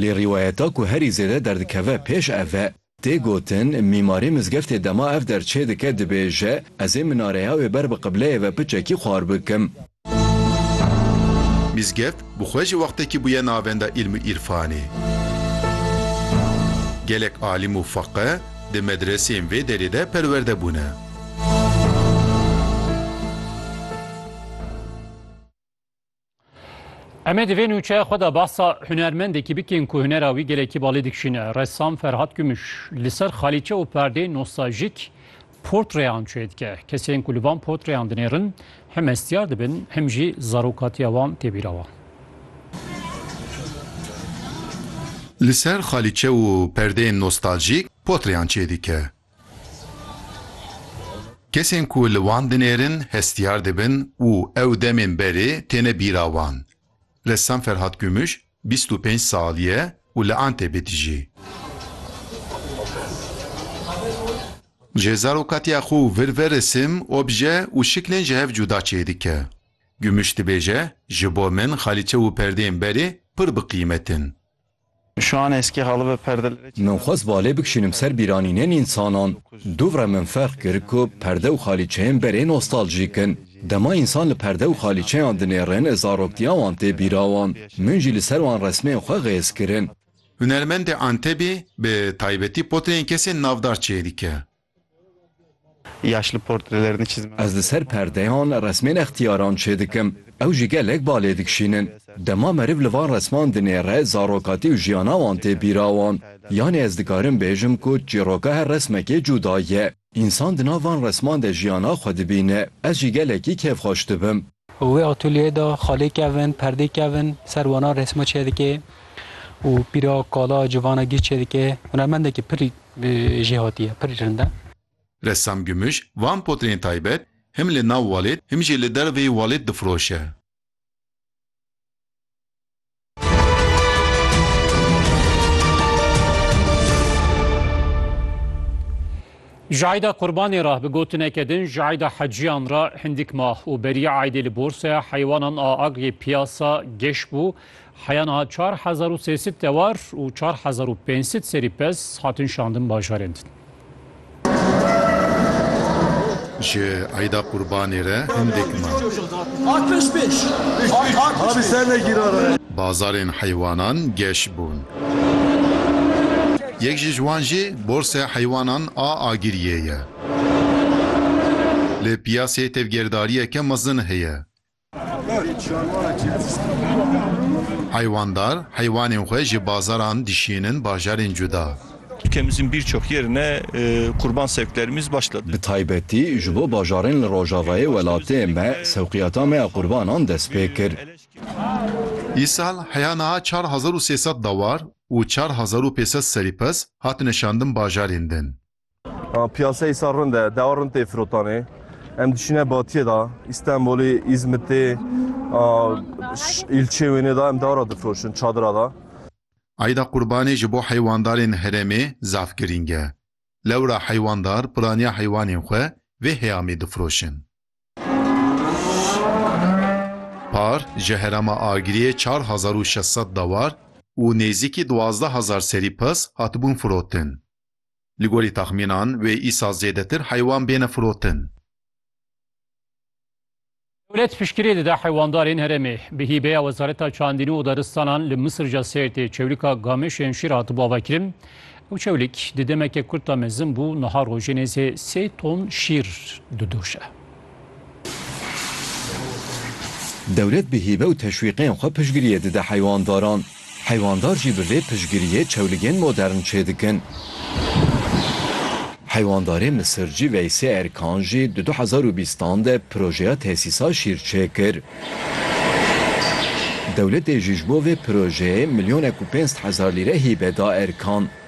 Lê rîwayeta ku herî zêde derdikeve pêş ev e. Tê gotin, mîmarê mizgeftê dema ev der çêdike dibêje, Ez ê minareya wê ber bi qibleyê ve piçekî xwar bikim. Mizgeft bi xwe jî wextekî bûye navenda îlm û îrfanê. Gelek alîm û feqih di medreseyên vê derê de perwerde bûne. Em ê di vê nûçeya xwe de behsa hunermendekî bikin ku hunera wî gelekî balê dikişîne. Ressam Ferhat Gümüş li ser xalîçe û perdeyên nostaljîk portreyan çê dike. Kesên ku li van portreyan dinêrin hem hestiyar dibin hem jî zarokatiya wan tê bîra wan. Li ser xalîçe û perdeyên nostaljîk portreyan çê dike. Kesên ku li wan dinêrin hestiyar dibin û ew demên berê têne bîra wan. Ressam Ferhat Gümüş bîst û pênc salî ye û li Antebê dijî. Ji zarokatiya xwe û vir ve resim, obje û şiklên ji hev cuda çêdike. Gümüş dibêje, Ji bo min xalîçe û perdeyên berê pir bi qîmet in. Min xwest balê bikişînim ser bîranînên însanan. Dûvre min ferq kir ku perde û xalîçeyên berê nostaljîk in. Dema însan li perde û xalîçeyan dinêrin zaroktiya wan tê bîra wan. Min jî li ser wan resmên xwe xêz kirin. Hunermendê Antebî bi taybetî potreyên kesên navdar çêdike. Ez li ser perdeyan resmên extiyaran çêdikim, ew jî gelek ba lê dikişînin. Dema meriv li van resman dinêre zarokatî û jiyana wan tê bîra wan. Yanî ez dikarim bêjim ku çîroka her resmekê cuda ye. Însan di nav van resman de jiyana xwe dibîne. Ez jî gelekî kêfxweş dibim. Û wê atolyeyê de xalê kevin, perdê kevin, ser wana resma çêdike û pîra kala, civana gîr çêdike. Hunermendeke pir jêhatî ye, pir rind e. Ressam Gümüş, van potreyên taybet him li nav walêt him jî li derveyî walêt difiroşe. Jayda Qurbanê ra bi gotineke din Jayda Heciyan ra hindik ma û beriya aydê li borseya heywanan a Agryê Piyasa geş bû. Heya niha çar hezar û sê sid tewar û çar hezar û pênc sid serî pez hatin şandin bajarên din. Ji Eyda Qurbanê re hindek me. Bazarên heywanan geş bûn. Yek ji wan jî Borsaya Heywanan a Agiriyê ye. Li piyasê tevgerdariyeke mezin heye. Heyvandar heywanên xwe ji bazaran dişînin bajarên cuda. Ülkemizin birçok yerine kurban sevklerimiz başladı. Bi taybetî ji bo bajarên li rojavayê welatê me sewqiyata me ya qurbanan dest pê kir. Îsal heya niha çar hezar û sê sed dawar û çar hezar û pê sed serî pez hatine şandin bajarên din. Piyaseyê sar rind e, dewa rind tê firotanê. Em dişîne batiyê da, Îstenbolê, Îzmitê, îlçê wênê da em dewa ra difiroşin, çadira da. Eyda Qurbanê ji bo heywandarên herêmê zaf girîng e. Lewra heywandar piraniya heywanên xwe vê heyamê difiroşin. Par ji herêma Agiriyê çar hezar û şeş sed dewar û nêzîkî duwazdeh hezar serî pirs hatibûn firotin. Li gorî taxmînan wê îsal zêdetir heywan bêne firotin. Dewlet piştgirê dide heywandarên herêmê. Bi hîbeya Wezareta Çandînû û Daristanan li Misirca Sêrtê çewlika Gamêşên Şîr hatibû avakirin. Ew çewlik di demeke kurt de mezin bû, niha rojê nêzê sê ton şîr didoşe. Dewlet bi hîve û teşwîqên xwe piştgiriyê dide heywandaran. Heywandarr jî bi vê piştgiriyê çewligên modern çêdikin. Heywandarê misircî Veysê Erkan jî di du hezar û bîst an de projeya tesîsa şîr çêkir. Dewletê jî ji bo vê projeyê milyonek û pênc sed hezar lîre hîve da Erkan.